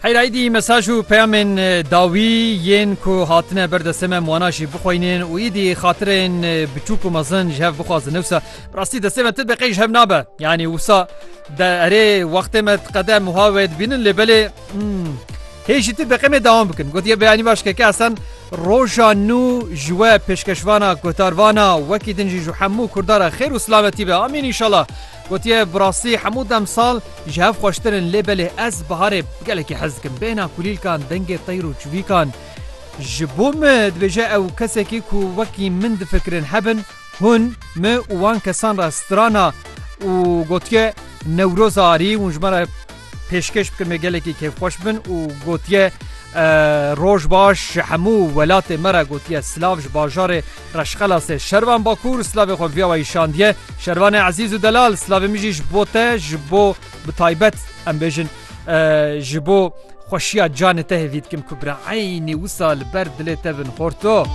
Heyr aydî mesaj û peyamên dawî yên ku hatine ber destê me wana jî bixwînin û îdî xatirên biçûk û mezin ji hev bixwazin newsa rastî destê me tib qey ji hev nabe yanî wisa de erê wextê me qede muha wê dibînin lê belê hê jî tu beqemê dawam bikin gotiye beyanî baş keke esen roja nû ji we pêşkeşvana kotarvana wekî din jî ji hemû kurdara xêr û silametî be amîn înşallah Gotiye, Bi rastî hemû demsal ji hev xweştir in lê belê ez biharê gelekî hez dikim. Bêhna kulîlkan, dengê teyr û çivîkan ji bo min dibêje ew kesekî ku wekî min difikirin hebin, hûn min û wan kesan re strana û gotiye, Newroza arî hûn ji me re Pêşkêş bikim ê gelekî kêfxweş bin û gotiye Roj baş ji hemû welatê me re gotiye silav ji bajarê Reşxelasê Şervan Bakûr silavê xwe viya we îşandiye Şervanê ezîz û delal silavê min jî ji bo te ji bo bi taybet em bêjin ji bo xweşiya canê te hêvî dikim ku bira eynî wisa li ber dilê te bin xorto.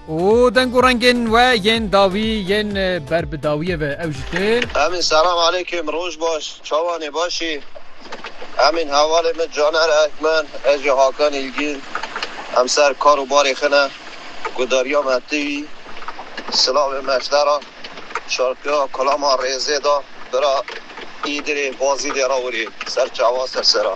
û deng û rengên we yên dawî yên ber bi dawiyê ve ew jî tên. Emîn selam aleykim roj baş çawanê başî Emîn hevalê min Caner Ekmen ez ji Hakan Îlgîn em ser kar û barê xine gudarîya me tu yî silavê me ji te ra şarkîya Kulama Rêzê da bira Îdirê Bazîdê ra wirî ser çawa ser sera.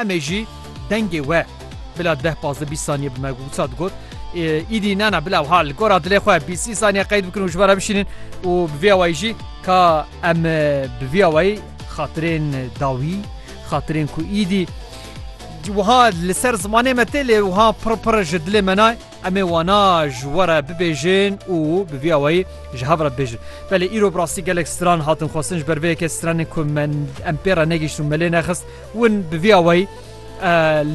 Em ê jî dengê we bila deh pazdeh bîst saniyê bi me wisa digot Îdî na na bila wiha li gora dilê xwe bîst sî saniye qeyd bikin û ji we re bişînin û bi vê awayî jî ka em bi vî awayî xatirên dawî xatirên ku îdî wiha li ser zimanê me tê lê wiha pir pir ji dilê me nayê em ê wana ji we re bibêjin û bi vî awayî ji hev re bibêjin. Belê îro bi rastî gelek stran hatin xwestin ji ber vê yekê stranên ku me em pê re negihişt û me lê nexist Hûn bi vî awayî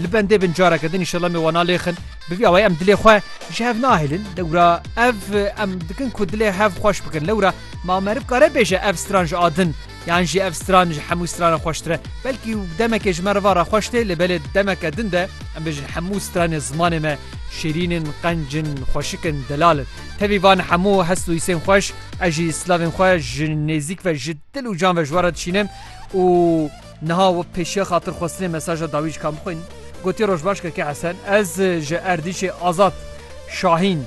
li bendê bin careke din înşellah me wana lêxin bi vî awayî em dilê xwe ji hev nahêlin lewra ev em dikin ku dilê hev xweş bikin lewra ma meriv kare bêje ev stran ji adin yan jî ev stran ji hemû stranan xweştir e belkî demekê ji meriva re xweş tê lê belê demeke din de em bêjin hemû stranê zimanê me şêrînin qencin xweşikin delalin tevî van hemû hest û îsên xweş ez jî slavên xwe ji nêzîk ve ji dil û can ve ji we re dişînim û Niha we pêşiya xatirxwestinê mesaja dawîjkan bixwînin. Gotiye Rojbaş Keke Hesen, ez ji Erdîşê Azad Şahîn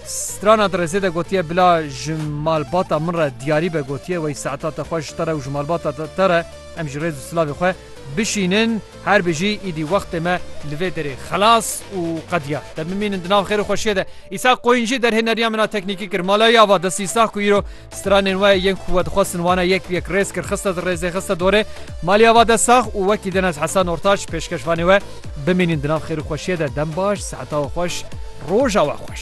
strana di rêzê de gotiye bila ji malbata min re diyarî be gotiye wey saeta te xweş ji te re û ji malbata te re em jî rêz û silavê xwe bişînin her bijî îdî wextê me li vê derê xelas û qediyar te bimînin di nav xêr û xweşiyê de. Îshak Qoyîn jî derhêneriya min a teknîkî kir. Malayê ava destî Îshak ku îro Stranên we yên ku we dixwestin wana yek bi yek rêz kir, xiste di rêzê, xiste dorê. Maliya va dest sax û wekî Denes Hesan Ortaç, pêşkeşvanê we, bimînin di nav xêr û xweşiyê de. Dem baş, seheta we xweş, roja we xweş.